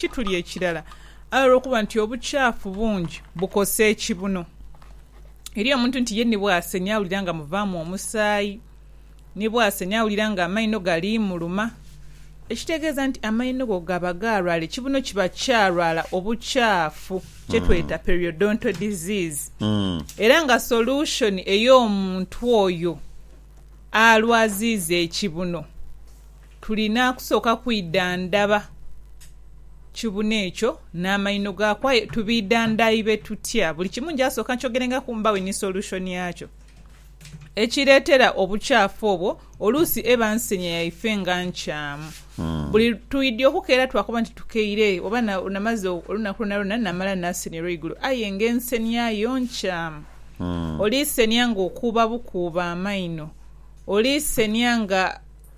kituli ekirala aye olw'okuba nti obukyafu bungi bukosa ekibuno. Eriyo omuntu nti ye ni bw'asenha awulira nga muvaamu omusaayi, ni bw'asenha awulira ng'amaino gali muluma. Ekitegeeza nti amaino go gaba gaalwala, ekibuno kiba kyalwala obukyafu kye tweta periodontal disease. Era nga solution ey'omuntu oyo alwaziiza ekibuno. Tulina kusooka kwidhandhaba kibune ekyo n'amaino gaaku. Aye tubiidhandhaibe tutya? Buli kimu nja sooka nkyogerengaku mbaghe ni solution yakyo. Ekireetera obukyafu obwo oluusi eba nsenya yaife nga nkyamu. Buli twidya okukeera twakoba nti tukeire oba namaze olunaku lwonalwona namala nasenia olweigulo aye nga ensenia yo nkyamu. Oli senia ng'okuuba bukuuba amaino. Oli senia nga.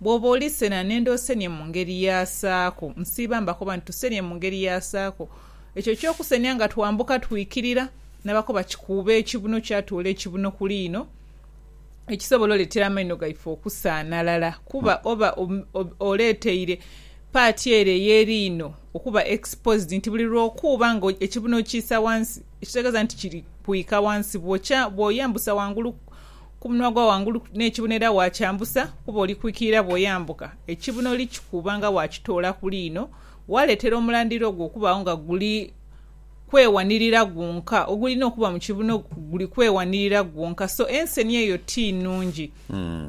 Bw'oba oli sena nenda osenie mu ngeri y'asaako. Nsiiba mbakoba nti tusenie mu ngeri y'asaako. Ekyo eky'okusenia nga twambuka twikirira, nabakoba kikuuba ekibuno kyatuula ekibuno ku liino, ekisobola oletera amaino gaife okusaanalala kuba oba oleteire paati ere ey'eriino okuba exposed nti buli lw'okuuba nga ekibuno okiisa wansi ekitegeza nti kiri kwika wansi bw'oyambusa wangulu Ku munwa ogwa ghangulu n'ekibuno era waakyambusa, kuba oli kwikiira bw'oyambuka. Ekibuno likikuuba nga waakitoola ku liino, waaleetera omulandira ogwo okubaagho nga guli kwewanirira gwonka. Ogulina okuba mu kibuno guli kwewanirira gwonka. So enseni eyo ti nnungi.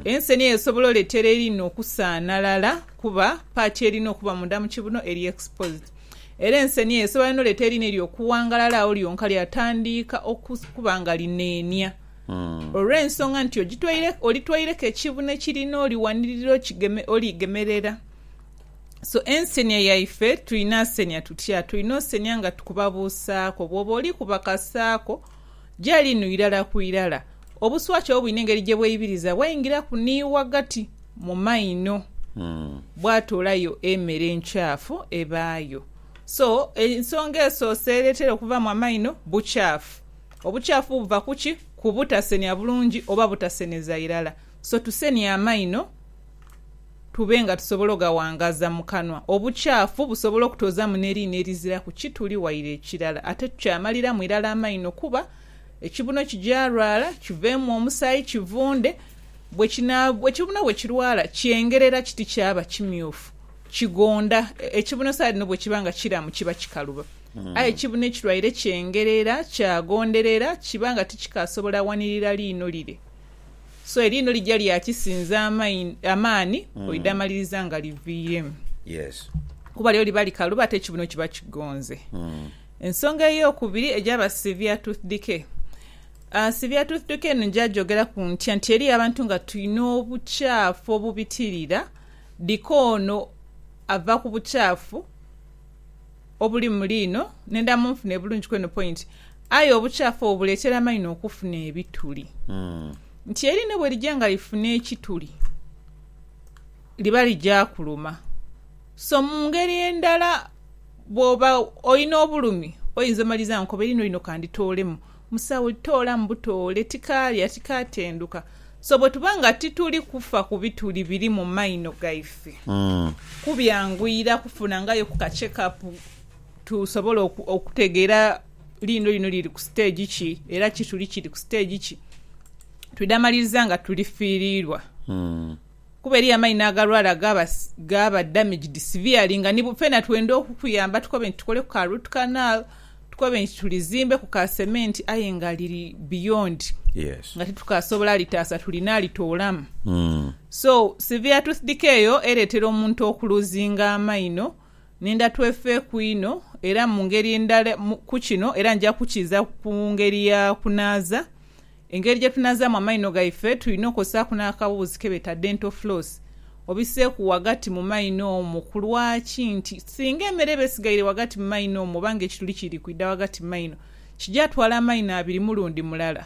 Enseni eyo esobola oleetera eriino okusaanalala kuba paati erina okuba munda mu kibuno eri exposed. Era enseni eyo esobola n'oleeta eriino eryo okuwangalala agho lyonka lyatandiika okuba nga lineenia. olw'ensonga nti olitwaireku ekibuno ekiri n'oli wanirira oligemerera. So ensenia yaife tulina asenia tutya? Tulina osenia nga tukuba buusaako. Bwoba oli kuba kasaako gyali nu irala ku irala, obuswaki obwo bwine engeri gye bweibiriza bwaingiraku ni ghagati mu maino bwatoolayo emere enkyafu ebaayo. So ensonga esoose ereetera okuvaamu amaino bukyafu. Obukyafu buva ku ki? Ku butasenia bulungi oba butaseneza irala. So tusenie amaino tube nga tusobola ogawangaza mu kanwa. Obukyafu busobola okutozamu n'eriina eriziraku ki tuli waire ekirala. Ate tukyamaliramu irala amaino kuba ekibuno kigyalwala, kiveemu omusaayi, kivunde. Ekibuno bwe kirwala kyengerera kiti kyaba kimyufu, kigonda. Ekibuno saha dhino bwe kiba nga kiramu kiba kikaluba. Aye ekibuna ekirwaire kyengerera, kyagondherera, kiba nga tikikaasobola wanirira liino lire. So eriino lija lya kisinza amaani oidhamaliriza nga liviiremu. Kuba lyo liba likalu ate ekibuno kiba kigonze. Ensonga ey'okubiri egyaba severe tooth decay. Severe tooth decay eno nja gyogeraku ntya? Nti eriyo abantu nga twine obukyaafu obubitirira, decay ono ava ku bukyaafu. obuli mu liino nenda munfune bulungi kweno point aye obukyafu obwo buletera amaino okufuna ebituli nti eriino bwerija nga lifuna ekituli liba lija kuluma so mungeri endala bwoba olina obulumi oyinza omaliza nkoba eriino lino kanditoolemu Musawo, toolamu butoole, tikaalya, tikaatenduka. So bwetuba nga tituli kufa ku bituli biri mu maino gaife, kubyanguyira kufunangayo ku ka checkup tusobole okutegeera liino lino liri ku stage ki era kituli kiri ku stage ki. Twidha maliriza nga tulifiirirwa. Kuba eriyo amaino agalwala agaaba gaaba damaged severely nga ni fena twenda okukuyamba tukobe nti tukoleku ka root canal, tukobe nti tulizimbe ku ka cement aye nga liri beyond Yes. nga titukasobola litaasa tulina litoolamu. Mm. So severe tooth decay eyo ereetera omuntu okuluzinga amaino nenda twefe ku inho era mu ngeri endala mu ku kino era nja kukiiza ku ngeri ya kunaaza Engeri gye tunaazaamu amaino gaife, tulina okozesaaku n'akaboghozi ke beeta dental floss. Obiseeku ghagati mu maino omwo. Ku lwaki? Nti singa emere eba esigaire ghagati mu maino omwo oba ng'ekituli kiri kwidha ghagati mu maino, kigya twala amaino abiri mulundi mulala.